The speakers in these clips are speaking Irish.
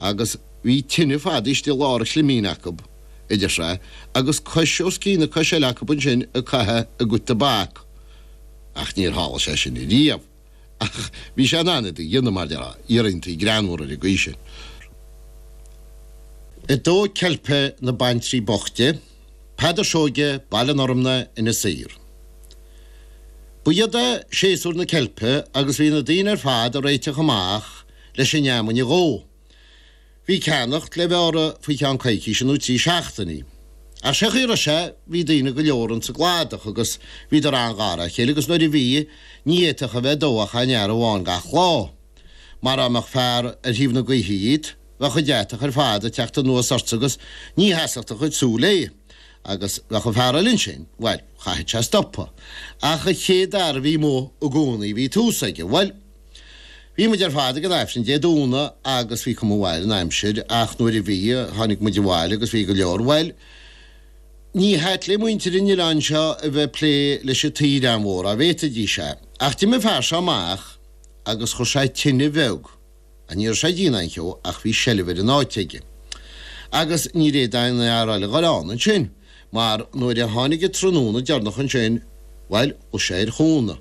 Agus bhí tine fadaithe istigh i lár a chlimín acu, iad ina suí agus cois os cionn na coise eile acu ansin ag caitheamh a gcuid tobac. Ach níor tharla sé sin riamh. Ach bhí sé in ann iad a dhéanamh, mar dhea, iarranntaí greannmhara ar an gcaoi sin. 2 Ceilp na baintrí boichte, Peadar Seoige, Baile an Fhormna, Inis Oírr. Ba sheod é séasúr na ceilpe agus bhí na daoine ar fad ag réiteach amach, leis an fheamainn a dhó. Bhí ceannacht le bheith orthu faoi cheann coicíse nó trí seachtainí. Ach sé chaoi a raibh sé, bhí daoine go leor ins an gcladach agus bhíodar an-ghar a chéile agus nuair a bhí, ní fhéadfadh a bheith ag dó ach aon fhear amháin gach lá. Mar dá mbeadh fear ar thaobh na gaoithe dhíot, bheadh an deatach ar fad ag teacht anuas ortsa agus ní sheasfadh do chuid súl é. Agus bheadh an fear eile ansin, bhuel, chaithfeadh sé stopadh. Ach an chéad fhear a bhí amuigh i gcónaí, bhí tús aige. Bhuel! Bhí muid ar fad ag an Aifreann Dé Domhnaigh agus bhí cuma mhaith ar an aimsir ach nuair a bhí, tháinig muid abhaile agus bhí go leor, bhuel, ní hait le muintir an oileáin seo a bheith ag plé leis an tsaoire an-mhór, dá bhféadfaidís é. Ach d'imigh an fear seo amach agus chuir sé tine bheag, á ní raibh sé ag déanamh aon cheo ach bhí seilbh ar an áit aige. Agus níor fhéad aon fhear eile a ghoil ann ansin mar nuair a tháinig an tráthnóna deireanach ansin, bhuel, chuaigh sé ar chúnamh.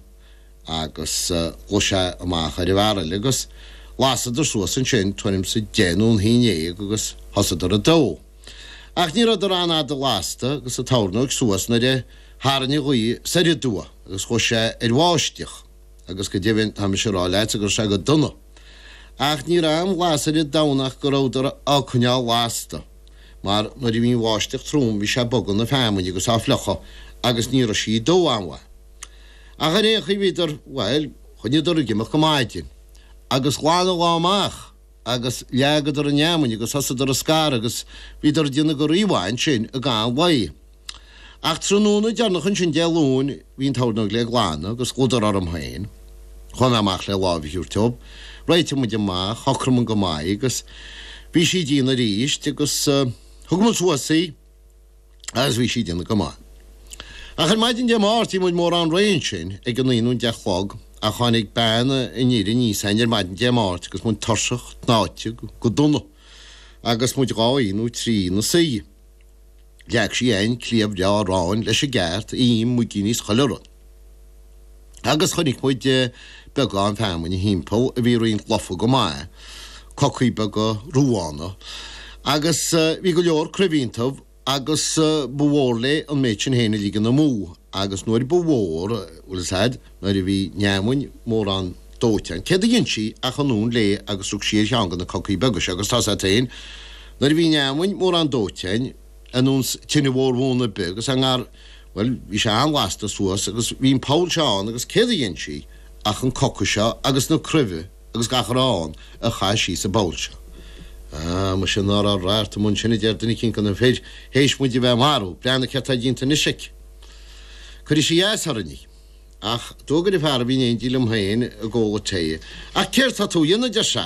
Agus chuaigh sé amach ar an bhfear eile, agus lasadar suas ansin tuairim 's a deich nó an haon dhéag agus thosadar a' dó. Ach ní rabhadar an-fhada lasta agus a' tornóg suas nuair a tharraing gaoth soir aduaidh agus ghabh sé ar bháisteach, agus go deimhin tá mise a' rá leatsa go raibh sé go dona. Ach ní raibh aon lasair ar domhan ach go rabhadar á coinneáil lasta, mar nuair a bhí an bháisteach trom bhí sé a' bogadh na feamainne agus á fliuchadh agus ní raibh sí a' dó an-mhaith. Ach ar aon chaoi bhíodar, bhuel, choinníodar ag imeacht go maidin. Agus ghlan an lá amach agus leagadar an fheamainn agus thosaíodar á scaradh agus bhíodar ag déanamh go rímhaith ansin i gcaitheamh an lae. Ach tráthnóna deireanach ansin Dé Luain bhí an tornóg le glanadh agus chuadar orm féin. Chuaigh mé amach le láimh a thabhairt dóibh, réitigh muid amach, shocraigh muid go maith agus bhí sí ag déanamh aríst agus thug muid suas í. agus bhí sí ag déanamh go maith. Ach ar maidin Dé Máirt, bhí muid mórán réidh ansin, ag a naoi nó a deich a chlog, ach tháinig bean an fhir aníos a'inn ar maidin Dé Máirt agus muid tuirseach, tnáite, go dona, agus muid dhá oíche nó trí ina suí. Leag sí a'inn cliabh bhreá aráin leis an gceart, im, muigín is chuile rud. Agus chonaic muid beagán feamainne thimpeall a bhí roinnt lofa go maith, cocaí beaga, ruabhána. Agus bhí go leor cruimhe iontu agus ba mhór léi an méid sin féin a ligean amú agus nuair ba mhór, bhuel, is ait, nuair a bhí an fheamainn mórán dóite againn, céard a dhein sí ach anonn léi agus rug sí ar cheann de na cocaí beaga seo agus tá's a't féin, nuair a bhí an fheamainn mórán dóite againn, anúns tine mhór bhuan ar bith agus a ngar, bhuel, bhí sé an-lasta suas agus bhí an poll seo ann agus céard a dhein sí ach an coca seo agus na cruimhe agus gach a raibh ann a chaith sí sa bpoll seo. Ah, muise, ná raibh rath ort amuigh ansin, a deir duine eicínt de na fir, théis muid a bheith ag marú breathnaigh céard tá déanta anois aici. Cuirfidh sí as orainn í. Ach d'fhuagair an fear a bhí in éindí liom féin ag ól an tae, Ach céard tá tú a dhéanamh, a deir sé,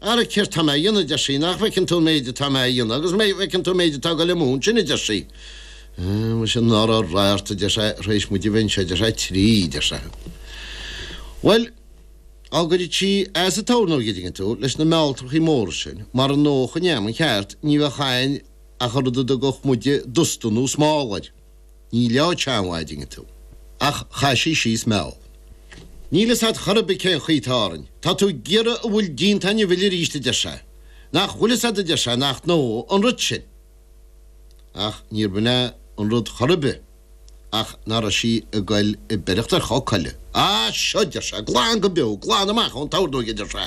Ara, céard tá mé a dhéanamh, a deir sí, nach bhfeiceann tú an méid atá mé a dhéanamh, agus an bhfeiceann tú an méid atá ag dul amú ansin, a deir sí. Muise, ná raibh rath ort, a deir sé, tar éis muid a bheith anseo, a deir sé, trí, a deir sé. Bhuel, á gcuirfeadh sí as an tabharnóg, an dtuigeann tú, leis na mealltrachaí móra sin, mara ndófadh an fheamainn ceart, ní bheadh ann ach an rud a dtugadh muide dusta nó smál air. Ní leo Teangmháidinghe tú. Ach chaith sí síos meall. Níl fhios aghat chor ar bith cé'n chaoi atá orainn. Tá tú ag iarraidh a bhfuil díonta againn a mhilleadh aríst adeir sé. Nach bhfuil fhios aghat adeir sé nach ndófaidh an rud sin. Ach níor bh'in é an rud chor ar bith ach ná raibh sí ag goil ag beireacht ar choca eile. Á! Seo adeir sé, glan go beo, glan amach ó'n tabharnóig adeir sé.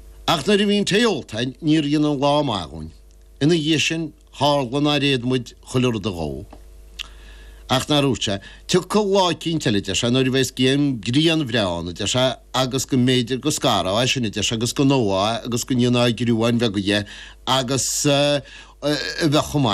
Ach nuair a bhí an tae ólta againn níor dhein an lá maith dhúinn. Ina dhiaidh sin tharla nár fhéad muid chuile rud a dhó. Ach nár dhúirt sé, 'Tiocfaidh lá eicínt eile, a deir sé, 'nuair a bheas grian bhreá ann, a deir sé, 'agus go mb'fhéidir go scarfá é sin, a deir sé, 'agus go ndófá é agus go ndéanfá gruáin bheaga dhe agus bheadh chomh maith.